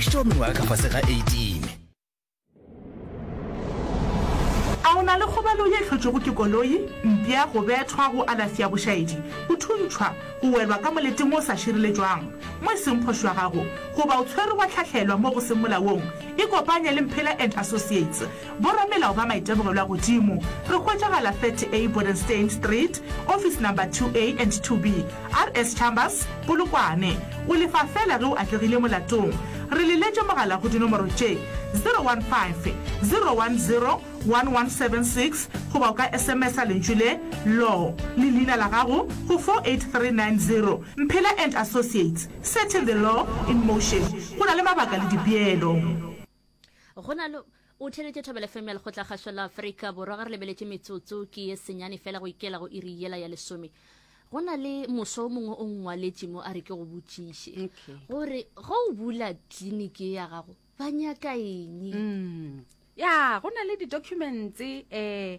Tšeo mengwaga ka fase ga 18. A o na le kgobalo ye hlotšwego ke koloi, mpša, go bethwa, go alasi ya bošaedi, go thuntšhwa, go welwa ka moleteng o sa šireletšwang mo e seng kgoši wa gago, goba o tshwerwe wa hlahlelwa mo go seng molaong? Ikopanye le Mphela and Associates Boramelao ba Maitebogello a Godimo re hwetšagala 30A Bodenstein Street, office number 2A and 2B, RS Chambers, Polokwane. O lefa feela ge o atlegile molatong. Re le letše mogala go dinomoro tše, 015 010 1176 goba o ka SMS-a lentšu le, Law, le leina la gago go 48390. Mphela and Associates, Setting the Law in Motion. Go na le mabaka le dipeelo. go na le o theletše thobela fm ya lekgotla kgašo la afrika borwa ga re lebeletše metsotso ke ye senyane fela go ikela go iri yela ya lesome go na le moso o mongwe o ngwaletše mo a re ke go botšiše gore ge o bula tliniki ya gago ba nyaka eng mm. ya go na le di-documents um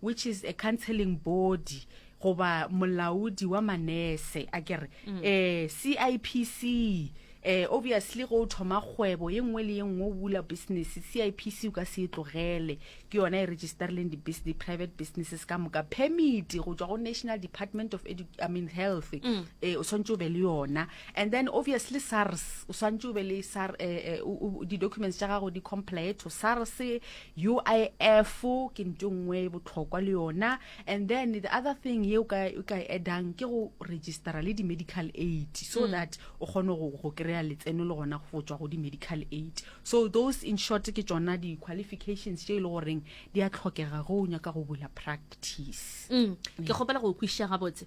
which is a counseling body goba molaodi wa manese a kere um mm. cipc eh obviously go thoma kgwebo ye nngwe le ye nngwe o bula business CIPC o ka se e tlogele ke yona e registerleng di business private businesses ka moka permit go tswa go National Department of Edu I mean Health mm. eh o swantse o be le yona and then obviously SARS o swantse o be le SARS eh, eh di documents tsa gago di comply to SARS UIF ke nto nngwe e botlhokwa le yona and then the other thing ye o ka e addang ke go registera le di-medical aid so mm. that o kgone go kry-a letseno le gona go tswa go di-medical aid so those in short ke tsona di-qualifications tše e le goreng di a tlhokega go o nyaka go bula practice mm. ke kgopela go kwiša gabotse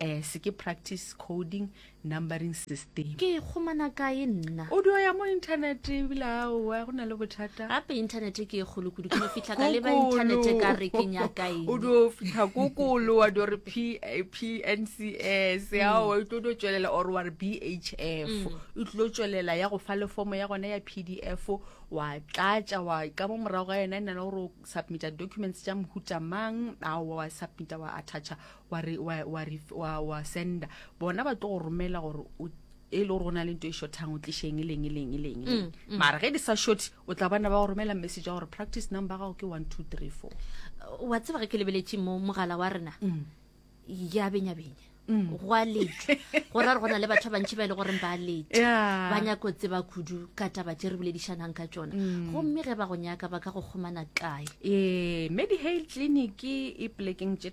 Eh, se ke practice coding numbering system ke e kgomana kae nna o dio ya mo internet ebile aowa go na le bothata gape internet ke e kgolo kudu ke fitlha ka leba internet e ka re ke nyakaeng o dio fitlha kokolo wa dio re pncs mm. aowa e tlo dio tswelela or wa re bhf mm. e tlo tswelela ya go fa le fomo ya gona ya pdf wa tlatša wa ka mo morago ga yona e na le gore o submita documents tša mohuta mang aowa wa submita wa attacha wa re wa wa wa wa senda bona ba tlo go romela gore o e le gore go na le nto e shothang o tlisheng e leng e leng e leng e leng mm, mm. mara ge di sa shothe o tla bana ba go romela message ya gore practice number gago ke one two three four wa tseba ge ke lebeletše mo mogala wa rena mm. ya benya benya Mm. go a letšwa go ra re go na le batho ba bantšhi ba e le goreng ba letša ba nyako tseba kudu ka taba tše re boledišanang ka tsona mm. gomme ge ba go nyaka ba ka go kgomana kae ee medi hale clinic e plekeng tše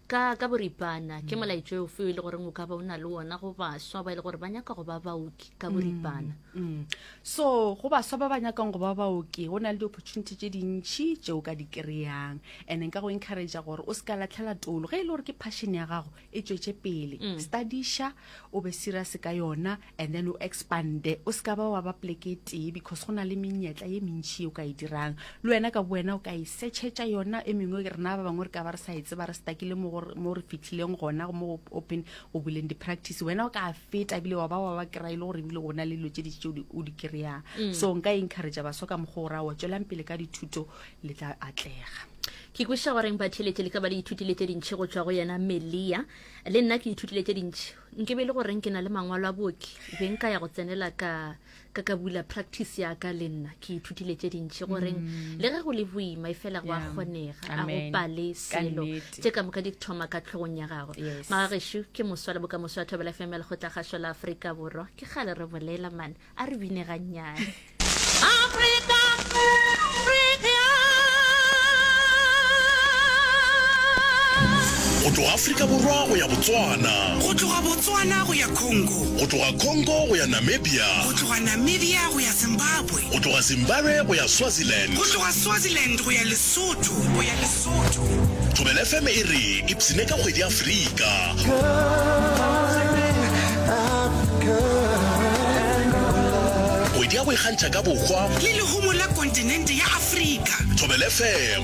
Ka, ka boripana, ke molaetšo ofe o e le goreng o ka ba o na le wona go baswa ba e le gore ba nyaka go ba baoki ka boripana? Mm. so go baswa ba ba nyakang go ba baoki go na le di-opportunity tše dintšhi tše o ka di kry-ang and nka go encouragea gore o se ka latlhela tolo ge e le gore ke passion ya gago e tšwetše pele studiša o be serious ka yona and then o expande o se ka ba wa ba pleke tee because go na le menyetla ye mentšhi o ka e dirang le wena ka bowena o ka e setšhetša yona e mengwe rena ba bangwe re ka ba re sa e tseba re stakile mo re fitlhileng gona mo open o boleng di-practice wena o ka feta ebile wa ba wa ba kry-e le gore ebile gona le dilo tse ditse o di kry-ang mm. so nka encouragea baswa ka mokgwa o ra wa tswelang pele ka dithuto le tla atlega ke kweša goreng batheletše le ka ba le ithutile tše dintšhi go tšwa go yena melia le nna ke ithutile tše dintšhi nke be e le goreng ke na le mangwalo a booki be nka ya go tsenela ka ka ka bula practice ya ka le nna ke ithutile tše dintšhi goreng mm. le ge go le boima e fela go a kgonega a go pale selo tše ka moka di thoma ka tlhogong ya gago magagešu ke moswa le boka moswa thobela fm lekgotla gašo la aforika borwa ke gale re bolela mane a re bine gannyane Africa, Africa. go tloga afrika borwa go ya botswana go tloga botswana go ya congo go tloga congo go ya namibia go tloga namibia go ya zimbabwe go tloga zimbabwe go ya swaziland go tloga swaziland go ya lesotho go ya Thobela FM e re ipshine ka kgwedi ya Afrika. Kgwedi ya go ikgantšha ka bohwa. Le lehumo la kontinente ya Afrika. Thobela FM.